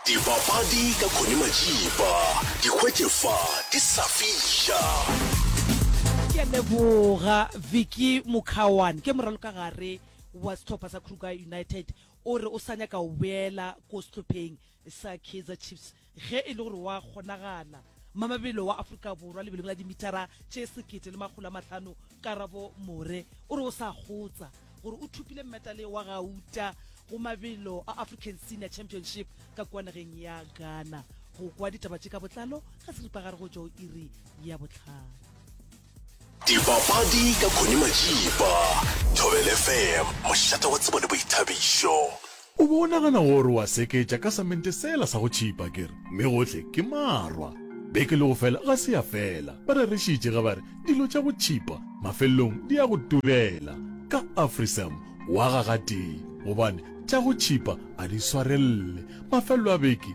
Dipapadi ka Connie Majiba, di hwetše fa di sa fiša. Ke a leboga Vicky Mukhawan ke moralokagare wa sehlopha sa Kruger United o re o sa nyaka go boela ko sehlopheng sa Kaizer Chiefs ge e le gore wa kgonagala. Mamabelo wa Afrika Borwa lebelong la dimithara tše sekete le makgolo a mahlano Karabo More o re o sa kgotsa gore o thopile mmetale wa gauta go mabelo a african senior championship ka kwa nageng ya ghana go kwa ditaba tše ka botlalo ga seripagare go tšwa o iri ya botlhano dipapadi ka khone majipa thobelefm mošata wa tsebo le boithabišo O be o nagana gore o a seketša ka samente sela sa go tšhipa, ke re, mme gohle ke marwa. Beke le go fela ga se ya fela, ba rerišitše ge ba re, Dilo tša go tšhipa mafelelong di ya go turela. Ka Afrisam o aga gatee, gobane tša go tšhipa a di swarelele. Mafelelo a beke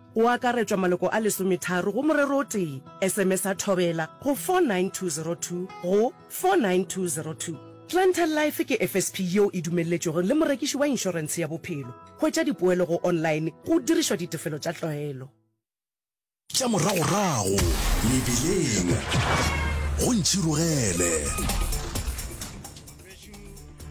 Go akaretšwa maloko a lesometharo go morero o tee. Esemesa Thobela go 49202 go 49202. Planter Life ke FSP yeo e dumelletšwego le morekiši wa inšorense ya bophelo. Hwetša dipoelo go online go dirišwa ditefelo tša tlwaelo. Tša moragorago mebileng go ntšhirogele.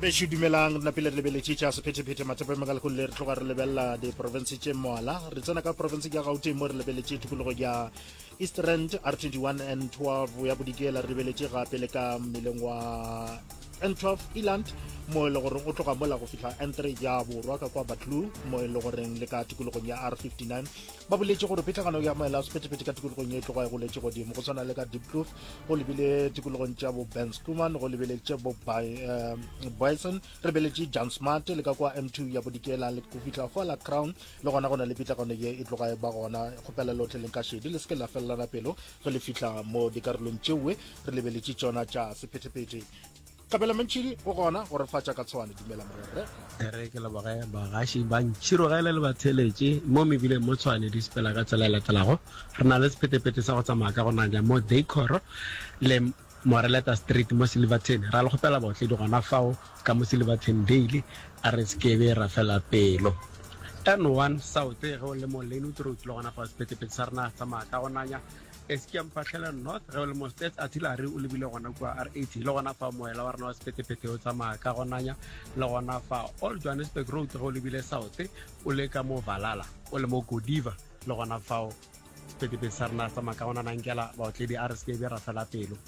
bešo dumelang re napile re lebeletše tša sephetephete mathapa makalekong le re tloga re lebelela diporofense tše moala re tsena ka porofense ya gauteng mo re lebeletše tikologo ya east rand r 21 n 12 ya bodikela re lebeletše gape le ka mmeleng wa n 12 eland mo e le goreng o tloga mola go fihla n 3 ya borwa ka kwa batlu mo e le goreng le ka tikologong ya r 59 ba boletše gore phetlagano ya maela a sephetephete ka tikologong e tloga e goletše godimo go tshwana le ka deep kloof go lebile tikologong tša bo ben schuman go lebeletše bo eh, bison re beletše john smart le ka kwa m2 ya bodikela le go fihla fa la crown le gona go na le pitlagano ye e tloga e ba gona kgopela lotlhe leng ka šedi le se ke la felelana pelo ge le fihla mo dikarolong tšeoe re lebeletše tšona tša sephetephete Tlabela mantšhidi go gona go refatša ka tshwane dumela morerre. Ere ke leboge bagaši ba ntšhirogele le batheletše mo mebileng mo tshwane di sepela ka tsela e latelago. Re na le sephetepete sa go tsamaya ka go nanya mo Decor le Moreleta Street mo Silverton. Ra le kgopela baotledi gona fao ka mo Silverton Dale a re sekebe ra fela pelo. N1 South ge o le mo Lynwood Road le gona fao sephetepete sa rena tsamaya ka go nanya Eskom Phatlhelong North, ge o le mo Stats Artillery o lebile gona kua RAT, le gona fa moela wa rena wa sephethephethe o tsamaya ka gonanya, le gona fa Old Johannesburg Road ge o lebile South o le ka mo Valala, o le mo Godiva le gona fao sephethephethe sa rena tsamaya ka gonana nkela baotledi a re se ke be ra fela pelo.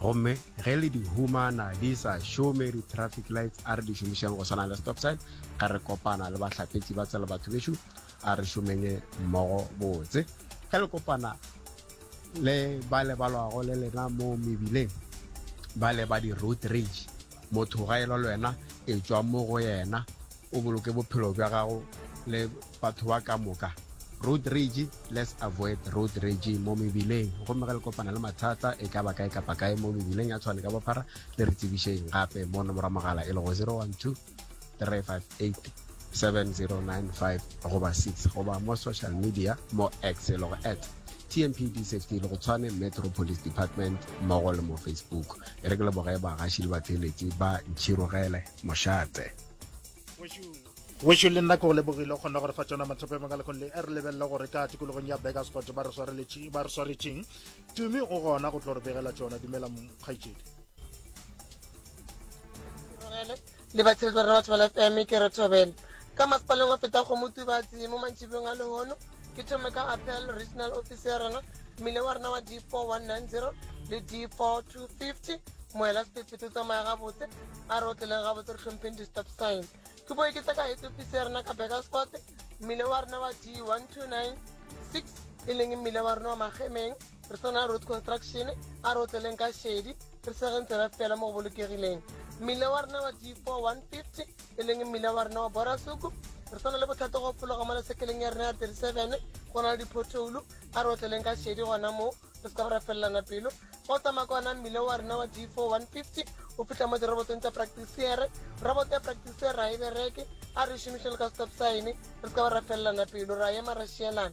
Gomme ge le di humana di sa šome di-traffic lights, a re di šomišeng go swana le stop sign. Ge re kopana le bahlapetši ba tsela batho bešo, a re šomenye mmogo botse. Ge le kopana le ba le balwago le lena mo mebileng, ba le ba di-road rage, motho ga e lwa le wena, e tšwa mo go yena, o boloke bophelo bja gago le Batho ba ka moka. Road rage, Let's avoid road rage mo mebileng. Gomme ge le kopana le mathata, e ka ba kae kapa kae mo mebileng ya tshwane ka bophara, le re tsebišeng gape mo nomoro ya mogala e lego 012-358-7095 goba 6, goba mo social media mo X e lego at TMPD Safety le go Tshwane Metro Police Department mmogo le mo Facebook. E re ke leboge bagaši le batheeletši ba Ntšhirogele Mošate. wešo le nna ke go lebogile o kgona gore fa tsona mathopo a mangwe lekgone le e re lebelele gore ka tikologong ya begas kgotse ba re swaretšeng tumi o gona go tlo re begela tsona dumela mokgaitsedi le batsheletso rre batho ba lafm ke re thobela ka masepaleng wa feta go motubatsi mo mantšhibong a lehono Ke thome ka Apel, regional office ya rena, mmile wa rena wa D4190 le D4250, moela sephethephethe o tsamaya gabotse, a re o tleleng gabotse re hlompheng di-stop sign. Ke boe ke tla ka head office ya rena ka Bekersfort, mmile wa rena wa D1296 e leng mmile wa rena wa Magemeng, re swana road construction a re o tleleng ka shedi re segeng tsela fela mo go bolokegileng mmila wa rena wa d 4150 e leng mmila wa rena wa borasuku re swana le bothata go fologa mo lesekeleng ya rena ya 37 go na le diphothoulo a re o tleleng ka shedi gona moo re se ka go ra felelana pelo go tsamaya ka ona mmila wa rena wa d 4150 o fitlha mo dirobotong tsa practisiere roboto ya practisiere ra e bereke a re šomišeng le ka stop sign re se ka go ra felelana pelo ra ema ra šielana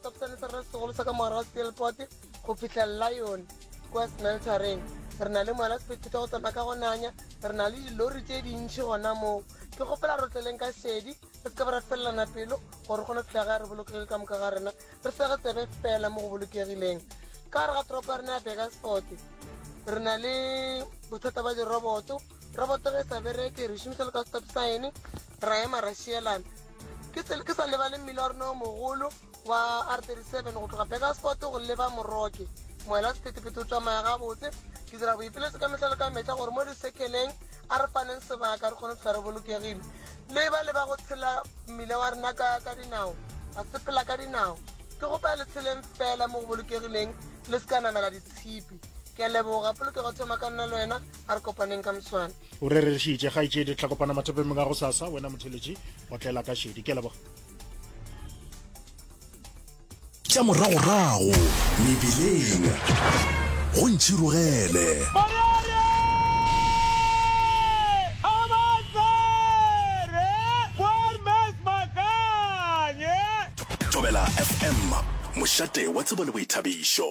Sepsane sa rena segolo sa ka mogare wa steelport go fitlha lion kwa smeltereng re na le moela sephethetha go tsamaya ka go nanya re na le dilori tse dintšhi gona moo ke gopela re tleleng ka šedi re se ka ba ra felelana pelo gore re kgone go fitlha ga re bolokegile ka moka ga rena re sege tsebe fela mo go bolokegileng ka gare ga toropo ya rena ya begasforte re na le bothata ba diroboto Roboto ge e sa bereke, re šomiša le ka stop sign, ra ema ra šielana. Ke tsele ke sa lebale mmila wa rona o mogolo wa R37 go tloga Burgersport go leba Moroke. Moela wa sephethephethe o tšamaya gabotse. Ke dira boipiletšo ka mehla le ka mehla gore mo disekeleng a re faneng sebaka re kgone go fihla re bolokegile. Le ba le ba go tshela mmila wa rena ka ka dinao, ba sepela ka dinao, ke kgopela le tsheleng feela mo go bolokegileng le se ka namela ditshipi. Ke a leboga. Polokego e thoma ka nna le wena. a re kopaneng ka moswane o rerešitše kgaetšedi tla kopana mathopemeng a go sasa wena motheletši o tlela ka šedi ke leboga tša moragorago mebileng go ntšhirogele thobela fm mošate wa tsebo le boithabišo